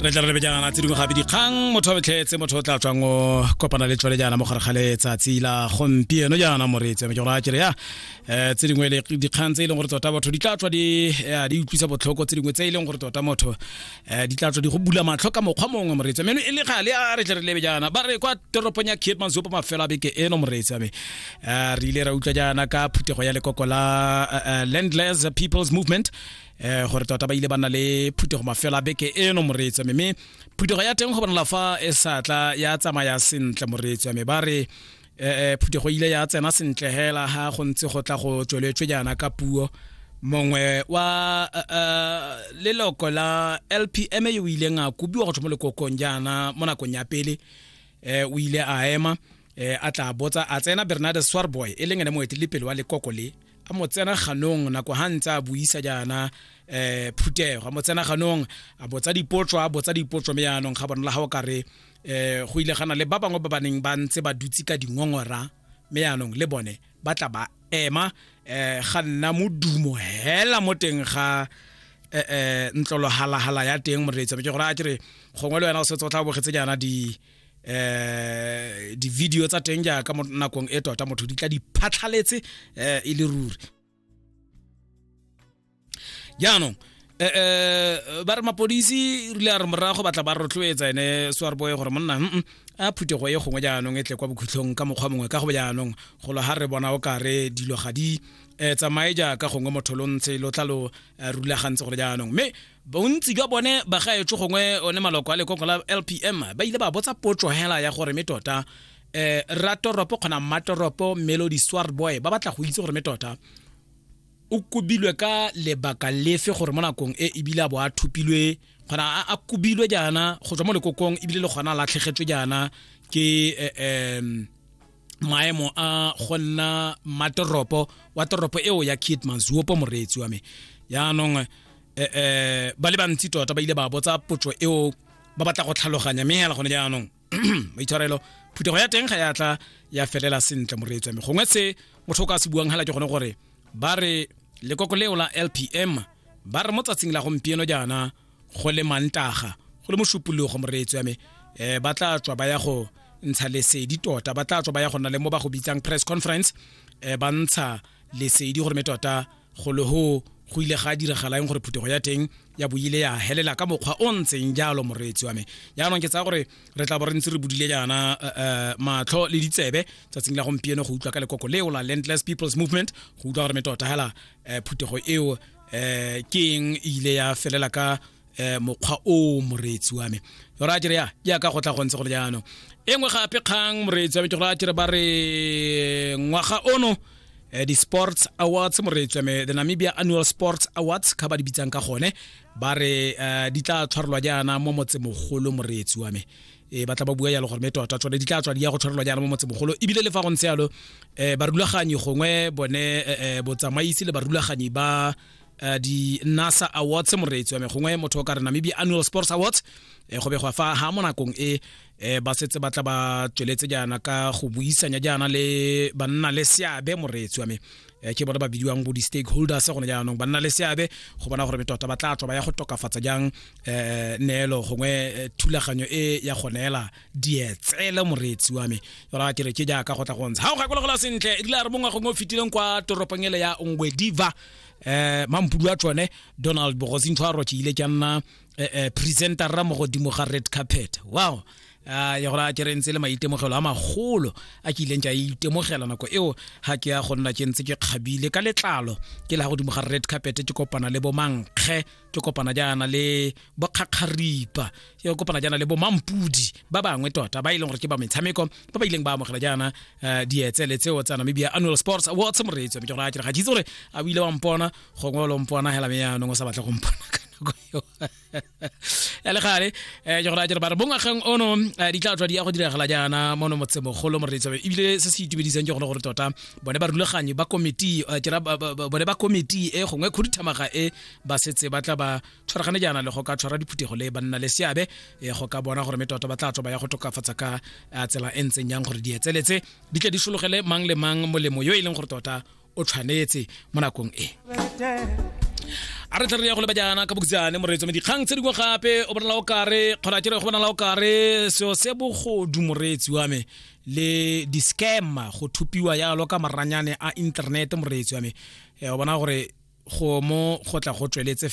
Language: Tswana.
re tla re lebejana tse dingwe gabe dikgang motho wa betlhetse motho o tla tswang o kopana le tswale jaana mo gare ga letsatsi la gompieno jaana moreetsi ame ke gore a kere ya um tse dingwe le dikgang tse e leng gore tota batho di tla tswa di eh, di utlwisa botlhoko tse dingwe tse e leng gore tota motho um di tla tswa di go bula matlho ka mokgwa mongwe moreetsi ame e le gale a re tle re lebe jaana ba re kwa toropong ya kate manzopo mafelo a beke eno moreetsi ame um re ile ra utlwa jaana ka phuthego ya lekoko la eh, eh, landless peoples movement eh gore tota ba ile ba na le phuthego mafelo a beke eno moreetsi mme phuthego ya teng go bonala fa e satla ya tsamaya sentle moreetsi mme ba re eh, eh phuthego ile ya tsena sentle hela ha go ntse go tla go tsweletswe jaana ka puo mongwe wa eh, eh, leloko la lpm yo o ileng a kobiwa go tswa mo lekokong jaana mo nakong ya pele um o ile a ema e a tla botsa a tsena bernard swarboy e leng ene moeteledipele wa lekoko le a mo tsena ganong nako ga ntse a buisa jaana um phuthego a mo tsena ganong a botsa dipotso a botsa dipotso me yaanong ga bona la ga o kare um go ile gana le ba bangwe ba baneng ba ntse ba dutse ka dingongora me yaanong le bone ba tla ba ema um ga nna modumo hela mo teng ga eh, eh, ntlolohalagala ya teng moreetsa ke gore a kere gongwe le wena o setse o tla bogetse jaana di eh di-video tsa teng jaaka mo nakong e tota motho di tla di phatlhaletse eh e le ruri jaanong eh, eh ba re mapodisi rile a re morago batla ba rotloetsa ene swarboe gore monna a phuthego e gongwe jaanong e tle kwa bokhutlhong ka mokgwa mongwe ka go jaanong golo ga re bona o kare dilo ga di um tsamaye jaaka gongwe motho lo ntse lo tla lo eh, rulagantse gore jaanong mme bontsi jwa bone bagaetsho gongwe one maloko a lekoko la lpm ba ile ba botsa potso hela ya gore me tota eh ratoropo kgona matoropo melody swar boy ba batla go itse gore me tota o kubilwe ka lebaka lefe gore mo nakong e ebile a bo a thupilwe gona a kubilwe jaana go tswa mo lekokong ebile le gona latlhegetswe jaana ke um maemo a go nna matoropo wa toropo eo ya kit mazuopo moreetsi wa me yaanong um eh, eh, ba le bantsi tota ba ile ba botsa potso eo ba batla go tlhaloganya mme hela gone jaanong maitshwarelo phuthego ya teng ga ya tla ya felela sentle moreetsi wa me gongwe se motho o ka se buang hela ke gone gore ba re lekoko leo la lpm ba re mo tsatsing la gompieno jaana go le mantaga go le mošupologo moreetso ya me um ba tla tswa ba ya go ntsha lesedi tota ba tla tswa ba ya go nna le mo ba go bitsang press conference um ba ntsha lesedi gore me tota go le go go ile ga diragalang gore phuthego ya teng ya boile ya helela ka mokgwa o ntseng jalo moreetsi wa me jaanong ke tsaya gore re tla bo re ntse re bodile jaana eh, eh, matlho le ditsebe tsatsing la gompieno go utlwa ka lekoko leo la landless people's movement go utlwa gore me tota hela eh, phuthego eo eh ke eng e ile ya felela ka eh mokgwa o moreetsi wa me o ra jere ya ya ka go tla go ntse go le jaanong e nngwe gape kgang moreetsi wa me ke go ra jere ba re ngwaga ono eh, di-sports awards moreetsi wa me the namibia annual sports awards ka ba di bitsang ka gone ba re eh, di tla tshwarelwa jaana mo motsemogolo moreetsi wa me e ba tla ba bua yalo gore me tota tsone di tla tswa di ya go tshwarelwa jaana mo motsemogolo ebile le fa go ntse yalo um barulaganyi gongwe bone um botsamaisi le barulaganyi ba uh, di nasa awards moreetsi wa me gongwe motho o ka re namibia annual sports awards eh, go begwa fa ha mo nakong e eh, ba setse ba tla ba tsweletse jaana ka go buisanya jaana le banna le seabe moreetsi wa me Eh, ke bona ba bidiwang bo di-stakeholders gone jaanong ba nna le seabe go bona gore tota ba tla tswa ba ya go tokafatsa jang um neelo gongwe eh, thulaganyo e ya go neela dietsele moreetsi wa me yona ke re ke jaaka go tla go ntsha ga o gakologelwa sentle e dila re mongwe gongwe o fetileng kwa toropong ele ya ngwediva um mampudu a tsone donald bogosintho a roke ile ke nna um presentera mo godimo ga red carpet wow a ya gore a ke re ntse le maitemogelo a magolo a ke ileng ke a itemogela nako eo ga ke ya go nna ke ntse ke kgabile ka letlalo ke la godimo ga red carpet ke kopana le bomankge ke kopana jaana le bokgakgaripa ke kopana jaana le bomampudi ba bangwe tota ba e leng gore ke ba metshameko ba ba ileng ba amogela jaana eh, dietsele tseo tsa namibia annual sports awards moreetso mme ke gore a ke re ga ke itse gore a o ile wa mpona gongwe o lo mpona hela me yaanong o sa batle go mpona ka nako eo ya le gale um ke gore a jere ba re bongwageng ono eh, di tla tswa di ya go diragala jaana mono motsemogolo moreitsabe ebile se se itumedisang ke gone gore tota bone ba rulaganyi ba komiti eh, ke ra ba- ba- ba- bone ba komiti e gongwe khuduthamaga e ba setse ba tla ba tshwaragane jaana le go ka tshwara diphuthego le banna le seabe eh, go ka bona gore mme tota ba tla tswa ba ya go tokafatsa ka eh, tsela e ntseng yang gore di etseletse di tle di sologele mang le mang molemo yo e leng gore tota o tshwanetse mo nakong e a re tlare ya go leba jaana ka bokitsane moreetso me dikgang tse dingwe gape o bonala o kare kgona ke re go bonala o kare seo se bogodu moreetsi wa me le di-scammer go thupiwa yalo ka maranyane a internet moreetsi wa me eh, o bona gore go mo go tla go tsweletse